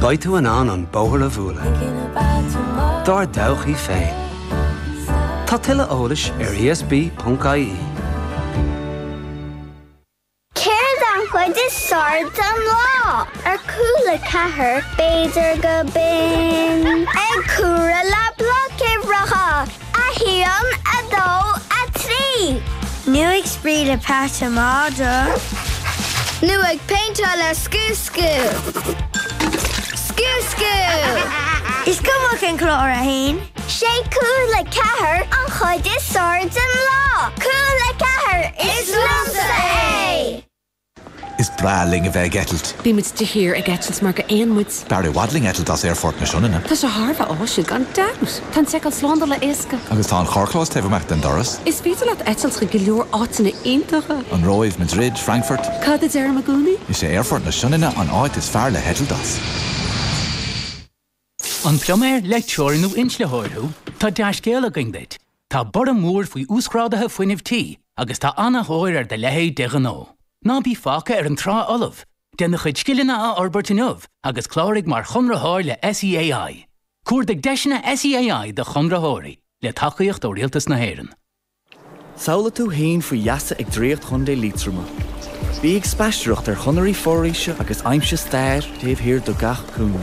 Beidh tú in ann an bóthar a bhualadh dár dtodhchaí féin. Tá tuilleadh eolais ar ESB.ie. Céard an chuid is fearr den lá? Ar Cúla4, b'fhéidir go binn. Ag comhaireamh le bloic uimhreacha. 1, 2, 3. Nó ag spraoi le peata madra. Nó ag péinteáil le scooscú. Scooscú! Is cuma cén clár é féin. Sé Cúla4 an chuid is fearr den lá. Cúla4, is linne é! Is breá linn a bheith ag eitilt. Ní muid de shíor ag eitilt mar gur éin muid. B'fhearr i bhfad linn eitilt as Aerfort na Sionainne. Tá sé thar a bheith áisiúil, gan dabht. Tá an tseiceáil slándála éasca. Agus tá an carrchlós taobh amuigh den doras. Is féidir leat eitilt chuig go leor áiteanna iontacha. An Róimh, Madrid, Frankfurt. Cad a deirim i gcónaí? Is é Aerfort na Sionainne an áit is fearr le heitilt as. An pluiméir, leictreoir nó inslitheoir thú? Tá dea-scéal againn duit, tá borradh mór faoi uasghráduithe fuinnimh tí agus tá ana-thóir ar do leithéid de ghnó. Ná bí fágtha ar an trá fholamh, déan do chuid scileanna a fhorbairt inniu agus cláraigh mar chonraitheoir le SEAI. Cuardaigh deiseanna SEAI do chonraitheoirí, le tacaíocht ó Rialtas na hÉireann. Samhlaigh tú fhéin faoi gheasa ag draíocht Chontae Liatroma. Bí ag spaistearacht ar chonairí foraoise agus aimsigh stair taobh thiar de gach cúinne.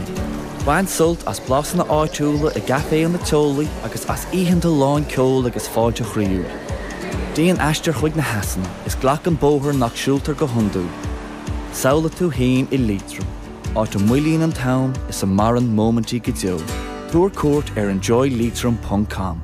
Bain sult as blasanna áitiúla i gcaiféanna teolaí agus as oícheanta lán ceoil agus fáilte chroíúil. Déan aistear chuig na heasanna is glac an bóthar nach siúltar go hiondúil. Samhlaigh tú fhéin i Liatroim, áit a moillíonn an t-am is a maireann móimintí go deo. Tabhair cuairt ar enjoyleitrim.com.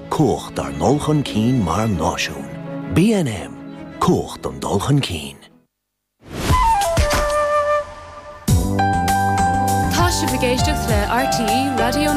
Cumhacht ár ndul chun cinn mar náisiún. BNM, Cumhacht an dul chun cinn. Tá sibh ag éisteacht le RTÉ Raidió na.